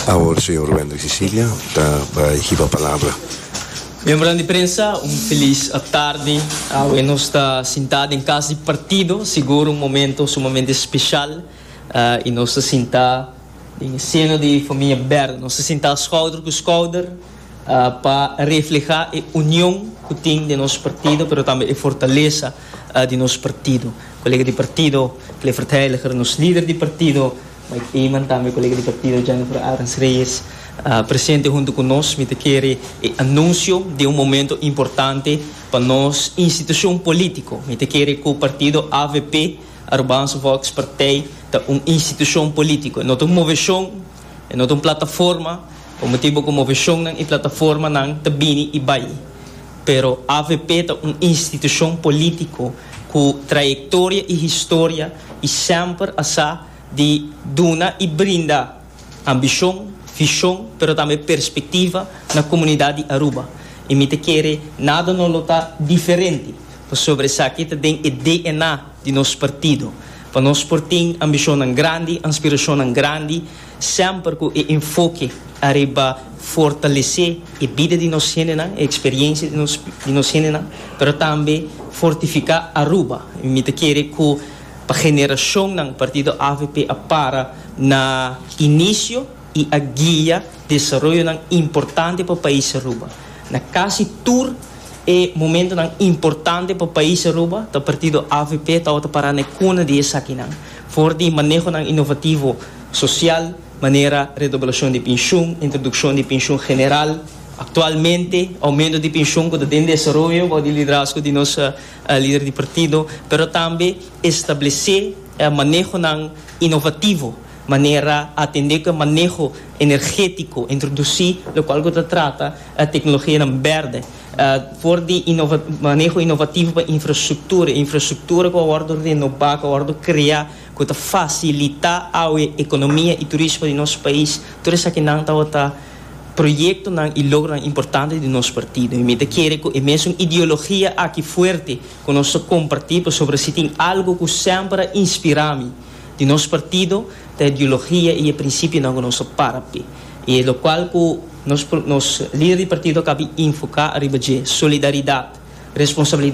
Awor señor Wendrick Cecilia ta bai hiba palabra. Miembronan di prensa un feliz tardi. Awe nos ta sintá den kas di partido, sigur un momento sumamente speshal i nos ta sintá den e seno di e famia Bèrdè. Nos ta sintá skouder ku skouder. pa reflehá e union ku tin den nos partido pero tambe e fortalesa di nos partido. Kolega di partido Clifford Heiliger, nos lider di partido Mike Eman tambe kolega di partido Jennifer Arens Reyes presente huntu ku nos. Mi ta kere e anunsio den un momento importante pa nos institushon polítiko. Mi ta kere ku partido avp, Arubaanse Volkspartij, ta un institushon polítiko. E no ta un moveshon, e no ta un plataforma. Por motibu cu moveshonnan y plataformanan ta bini y bay, pero avp ta un institucion politico cu trayectoria y historia y semper a sa di duna y brinda ambicion, vision, pero tambe perspectiva na comunidad di Aruba. Y mi ta kere nada no lo ta diferente pasobra esaki ta den e DNA di nos partido. Pa nos por tin ambicionnan grandi, anspiracionnan grandi. Semper cu e enfoke ariba fortalece e bida di nos hendenan, e experiencia di nos di nos hendenan, pero tambe fortifica Aruba. Mi ta kere cu pa generacionnan Partido avp a para na inicio y a guia desaroyonan importante pa pais Aruba. Na casi tur e momentonan importante pa pais Aruba ta Partido avp tawata para na e cuna di esakinan. For di manehonan inovativo Sosial, manera redoblacion di pinshion, introduccion di pinshion general, actualmente aumento di pinshion cu ta den desaroyo bou di liderazgo di nos lider di partido, pero tambe establece manehonan inovativo, manera atende cu e maneho energetico introduci locual cu ta trata tecnologianan berde for di maneho inovativo pa infrastructura, infrastructura cu a wordo renoba, cu a wordo crea. cu ta facilita awe economia y turismo di nos pais, tur esakinan tawata proyectonan y logronan importante di nos partido. Y mi ta kere cu e mesun ideologia aki fuerte cu nos ta comparti, pasobra si tin algo cu semper a inspira mi di nos partido ta e ideologia y e principionan cu nos a para p'e. Y e locual cu nos, nos lider di partido a cabí infoca ariba dje, solidaridad, responsabilidad.